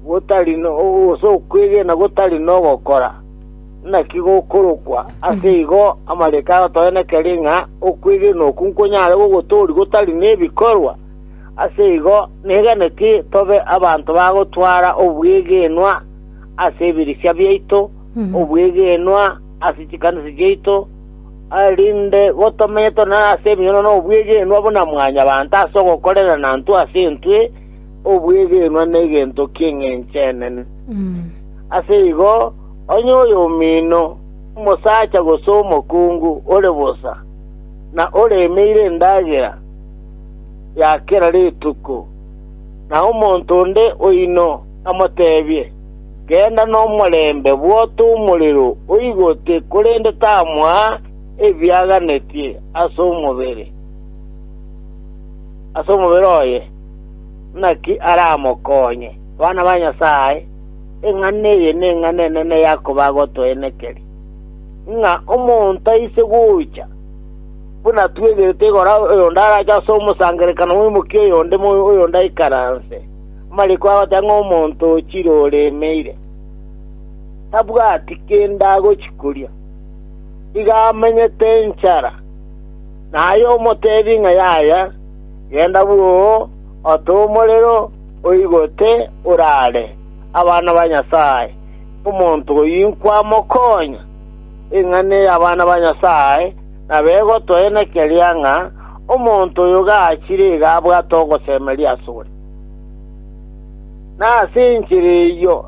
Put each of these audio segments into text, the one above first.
gotari gose okwegena gotari nogokora, naki gokorokwa. Ase igo amariko agotoenekeri ng'a okwegena okwo nkonyare gogotooria gotari nebikorwa. Ase igo negeneti tobe abanto bagotwara obwegenwa ase ebirisia biaito, obwegenwa ase chikanisa chiaito, erinde gotomenye tore nase ebinyoro na obwegenwa buna mwanyabanto ase ogokorera na intwe ase intwe, obwegenwa negento ki'engencho enene. Ase igo, onye oyomino, omosacha gose omokungu ore bosa, na oremeire endagera ya kera rituko, na omonto onde oino amotebie, Genda nomorembe, bwota omorero oigote, korende tamoaa ebiaganetie ase omobere oye, Naki aramokonye, bana ba Nyasae, eng'ana eye neng'ana enene yakoba agotoenekeri, ng'a omonto aise gocha, buna twegerete igoro oyonde arache ase omosangererekano bw'omokia oyonde, oyonde aikaranse. Amariko agoteba ng'a omonto ochire oremeire, tabwati kende agochi koria, iga amenyete enchara, na aye omotebi ng'a yaya. Genda bwoo, ote omorero oigote oraare abana ba Nyasae, omonto oyio inkwamokonya. Eng'ana ey'abana ba Nyasae nabegotoena keria ng'a omonto oyo gachire iga abwate ogosemeria asore. Na ase enchera eyio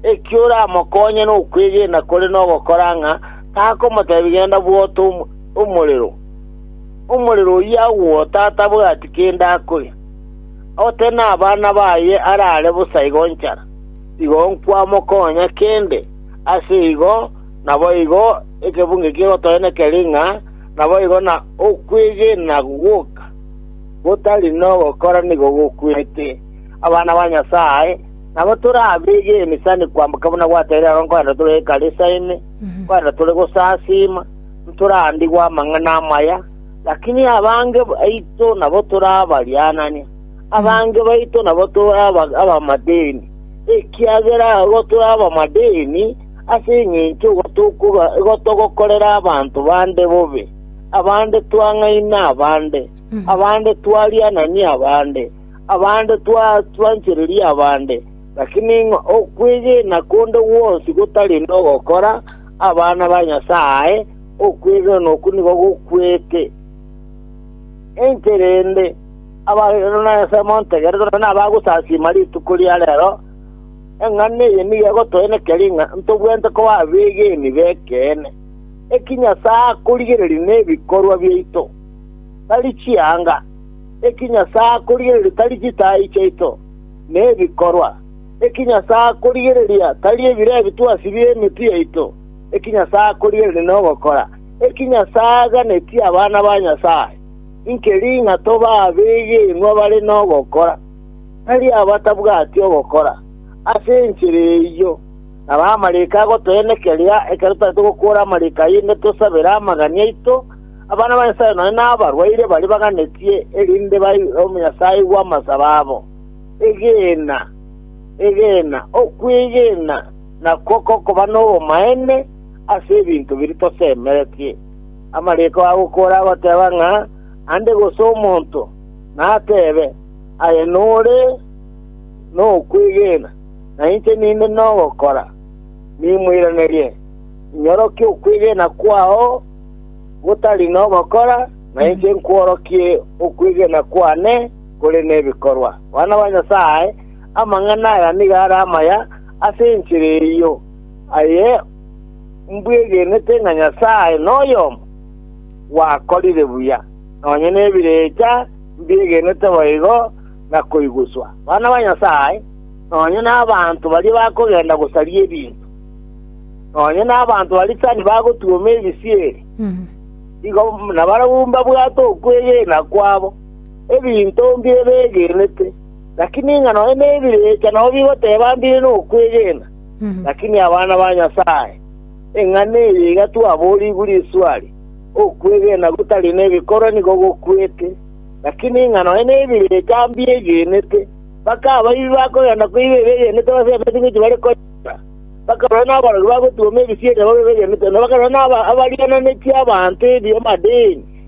ekio oramokonye nokwegena kore nogokora ng'a takomotebi genda bwoo ote omorero. “Omorero oyio agwota atabwati kende akoria, ote nabana baye arare bosa igo nchara, igo nkwamokonya kende, ase igo naboigo ekebunge kegotoenekeri ng'a naboigo na okwegena goka gotari nogokora nigo gokwete. Abana ba Nyasae nabo torabegeni sani kwamboka buna gwateire aro nkorende tore ekanisa ime, nkorende tore gosasiima, ntoraandigwe amang'ana amaya, lakini abange baito nabo torabarianania, abange baito nabo toraba abamadeni, ekiagera agwo tore abamadeni ase engencho igo tokoba- igo togokorera abanto bande bobe, abande twang'aina abande, abande twarianania abande, abande twa- twanchereria abande, lakini ng'a okwegena konde gwonsi gotari nogokora, Abana ba Nyasae, okwegena oko nigo gokwete. Inche rende, abagenwa na Nyasae montegerete, nonya nabagosasiima rituko ria reero, eng'ana eye nigo egotoenekeria ng'a ntobwenerete koba abegeni b'ekeene. Eki Nyasae akorigereria nebikorwa biaito, tari chianga. Eki Nyasae akorigereria tari chitaai chiaito, nebikorwa. Eki Nyasae akorigereria tari ebire ebi twasibie emeti yaito, eki Nyasae akorigereria nogokora eki Nyasae aganetie abana ba Nyasae. Inki ring'a tobe abegenwa bare nogokora, tari abatabwati ogokora? Ase enchera eyio naro amariko agotoenekeria ekero tari togokuora amariko ayio inde tosabere amagani aito, abana ba Nyasae nonya nabarwaire baria baganetie erinde bairwe Nyasae aigwe amasabo abo. Egeena, egeena, okwegena nakwo kokoba nobomaene ase ebinto biria tosemeretie. Amariko agokora agoteba ng'a ande gose omonto natebe, Aye nore nokwegena, na inche ninde nogokora, nimoiranerie, inyorokia okwegena kwao gotari nogokora, na inche nkworokie okwegena kwane, kore nebikorwa. Bana ba Nyasae, amang'ana aya nigo are amaya ase enchera eyio, aye mbwegenete ng'a Nyasae noyomo, gwakorire buya, nonya nebirecha mbiegenete boigo na koiguswa. Bana ba Nyasae, nonya nabanto baria bakogenda gosaria ebinto, nonya nabanto baria tani bagotuoma ebisieri, igo nabarabwo mbabwate okwegena kwabo. ebinto mbire begenete, lakini ng'a nonya nebirecha nabo bigoteba mbire nokwegena. Lakini abana ba Nyasae, eng'ana eye iga twaboorigwe riswari, Okwegena gotari nebikorwa nigo gokwete. Lakini ng'a nonya nebirecha mbiegenete, mpaka abaibi bakogenda koiba ebegenete ase ebinto ebi bare koiba, mpaka barabwo nabarori bagotuoma ebisieri nabo begenete, na mpaka barabwo nabariananetie abanto ebi amadeni.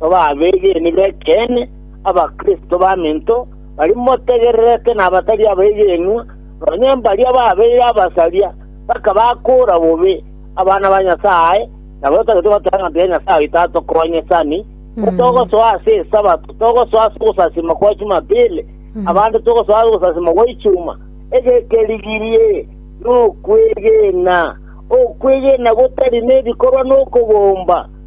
Toba abeegeni b'ekeene, Abakristo baminto, baria motegererete na abatari abegenwa, nonya mbaria babeire abasaria, mpaka bakoora bobe abana ba Nyasae, nabo totagete goteeba ng'a tiga Nyasae oito atokonye sani, ko togosoa ase Esabato, togosoa ase ogosasiima kwa Jumapili, abande togosoa ase ogosasiima gwa Ichuma. Egekerigirie nokwegena, okwegena gotari nebikorwa nokobomba.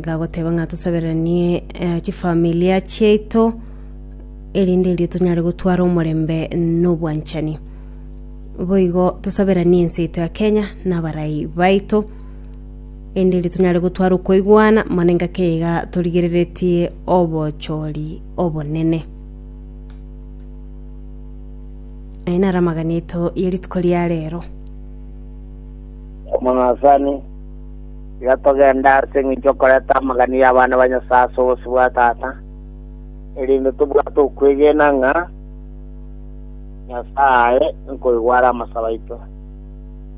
gagoteba ng'a tosaberanie eh, chifamilia chiaito erinde erio tonyare gotwara omorembe n'obwanchani boigo tosaberanie ense yaito ya kenya n'abarai baito ende eri tunyare gotwara okoigwana mana engake iga torigereretie obochori obonene aye naro amagana eto ye rituko ria rero omonasani Iga togende ase engencho y'okoreta amagani y'abana ba Nyasae ase obosio bwa Tata, erinde tobwate okwegena ng'a Nyasae nkoigware amasabo aito.